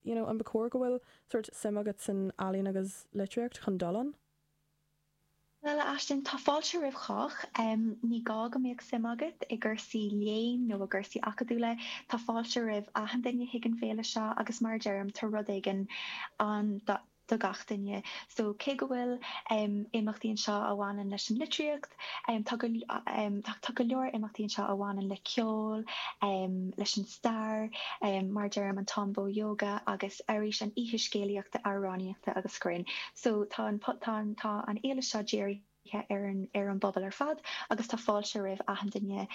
you know, an ba chóir go bhfuil sórt suim agat san ealaín agus litríocht chun dul ann? Bhuel, a Aisling, tá fáilte roimh chách. Ní gá go mbeadh suim agat i gcursaí léinn nó i gcursaí acadúla, tá fáilte roimh achan duine chuig an fhéile seo agus mar a deirim, tá rud éigin ann do do gach duine. So cé go bhfuil imeachtaí anseo a bhaineann leis an litríocht, tá go leor imeachtaí anseo a bhaineann le ceol, leis an stair, mar a deirim, an Tombow Yoga agus arís an oíche scéalaíochta, amhránaíochta agus grinn. So tá an fhéile seo dírithe. ar an bpobal ar fad agus tá fáilte roimh achan duine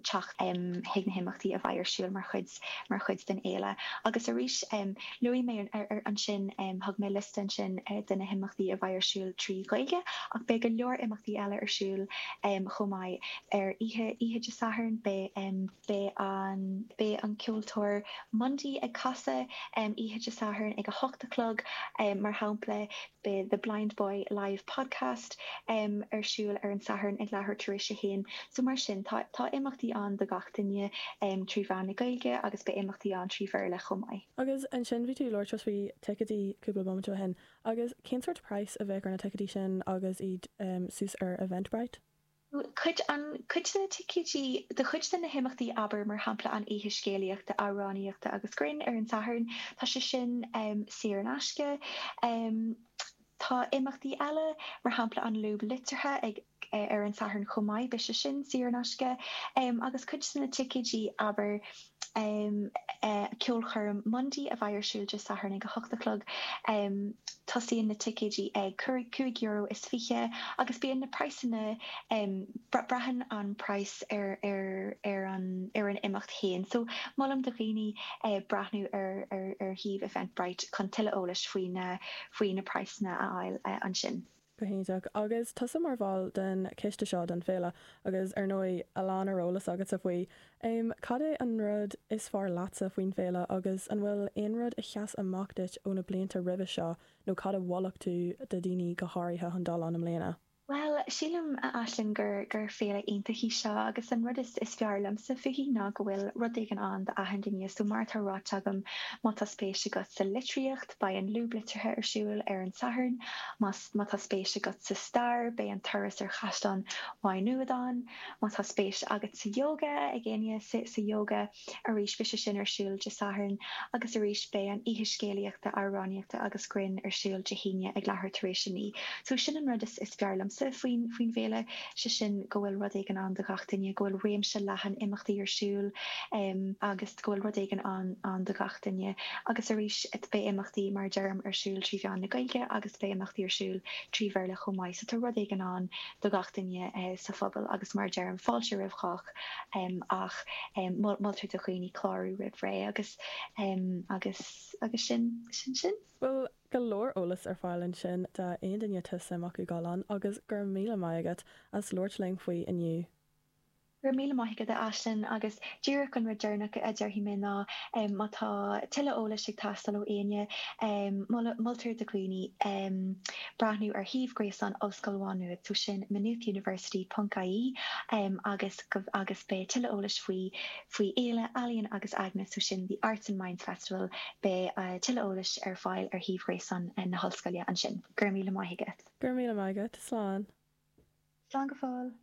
teacht chuig na himeachtaí a bheidh ar siúl mar chuid, mar chuid den fhéile. Agus arís, luaigh mé ansin, thug mé liosta ansin de na himeachtaí a bheidh ar siúl trí Ghaeilge ach beidh go leor imeachtaí eile ar siúl chomh maith. Ar oíche Dé Sathairn, beidh. Beidh an, beidh an ceoltóir Mundy ag casadh oíche Dé Sathairn ag a hocht a chlog, mar shampla, beidh The Blind Boy Live Podcast ar siúl ar an Satharn ag leathuair tar éis a haon. So mar sin, tá, tá imeachtaí ann do gach duine trí mheán na Gaeilge agus beidh imeachtaí ann trí Bhéarla chomh maith. Agus ansin bhí tú ag labhairt faoi ticéidí cúpla bomaite ó shin, agus cén sórt price a bheadh ar na ticéidí sin agus iad suas ar Eventbrite? Cuid, an, cuid de na ticéidí do chuid de na himeachtaí abair mar shampla an oíche scéalaíochta, amhránaíochta agus grinn ar an Satharn, tá sé sin saor in aisce. Tá imeachtaí eile mar shampla an Lúb Liteartha ag, ar an Satharn chomh maith, beidh sé sin saor in aisce. Agus cuid de na ticéidí abair. um ceolchoirm Mundy a bheidh ar siúl Dé Sathairn ag a hocht a chlog. um Tosaíonn na ticéidí ag cúig, cúig euro is fiche, agus bíonn na praghsanna, um braitheann an price ar, ar, ar an, ar an imeacht féin. So, molaim do dhaoine eh breathnú ar, ar, ar shuíomh Eventbrite chun tuilleadh eolais faoi na, faoi na praghsanna a fháil ansin. Go hiontach. Agus tusa mar bhall den choiste seo don fhéile, agus ar ndóigh a lán ar eolas agatsa faoi, em, cad é an rud is fearr leatsa faoin fhéile agus an bhfuil aon rud a sheas amach duit ó na blianta roimhe seo nó cad a mholfadh tú do dhaoine go háirithe chun dul ann i mbliana? Bhuel, sílim, a Aisling, gur, gur féile iontach í seo agus an rud is, is fearr liomsa fúithi ná go bhfuil rud éigin ann do achan duine, so mar atá ráite agam, má tá spéis agat sa litríocht, Beidh an Lúb Liteartha ar siúl ar an Satharn. Má tá spéis agat sa stair, beidh an turas ar Chaisleán Mhaigh Nuad ann. Má tá spéis agat sa yoga, ag éinne sa yoga arís, beidh sé sin ar siúl Dé Sathairn. Agus arís, beidh an oíche scéalaíochta, amhránaíochta agus grinn ar siúl Dé hAoine ag leathuair tar éis a naoi. So sin an rud is fearr liomsa faoin faoin bhféile, sé sin go bhfuil rud éigin ann do gach duine, go bhfuil réimse leathan imeachtaí ar siúl agus. go bhfuil rud éigin ann ann do gach duine agus arís beidh imeachtaí mar a deirim ar siúl trí mheán na Gaeilge agus beidh imeachtaí ar siúl trí Bhéarla chomh maith so tá rud éigin ann do gach duine sa phobal agus mar a deirim fáilte roimh chách ach moltar do dhaoine clárú roimh ré agus agus agus sin sin sin. Bhuel go leor eolas ar fáil ansin do aon duine atá suim acu dul ann agus go raibh míle maith agat as labhairt linn faoi inniu. Go raibh míle maith agat, a Aisling, agus díreach an rud deireanach a déarfaidh mé ná má tá tuilleadh eolais ag teastáil ó éinne, moltar do dhaoine breathnú ar shuíomh gréasáin Ollscoil Mhá Nuad, so sin maynoothuniversity ponc IE agus beidh tuilleadh eolais faoi faoi Fhéile Ealaíon agus Aigne, so sin The Arts and Minds Festival, beidh tuilleadh eolais ar fáil ar shuíomh gréasáin na hOllscoile ansin. Go raibh míle maith agat. Go raibh míle maith agat. Slán. Slán go fóill.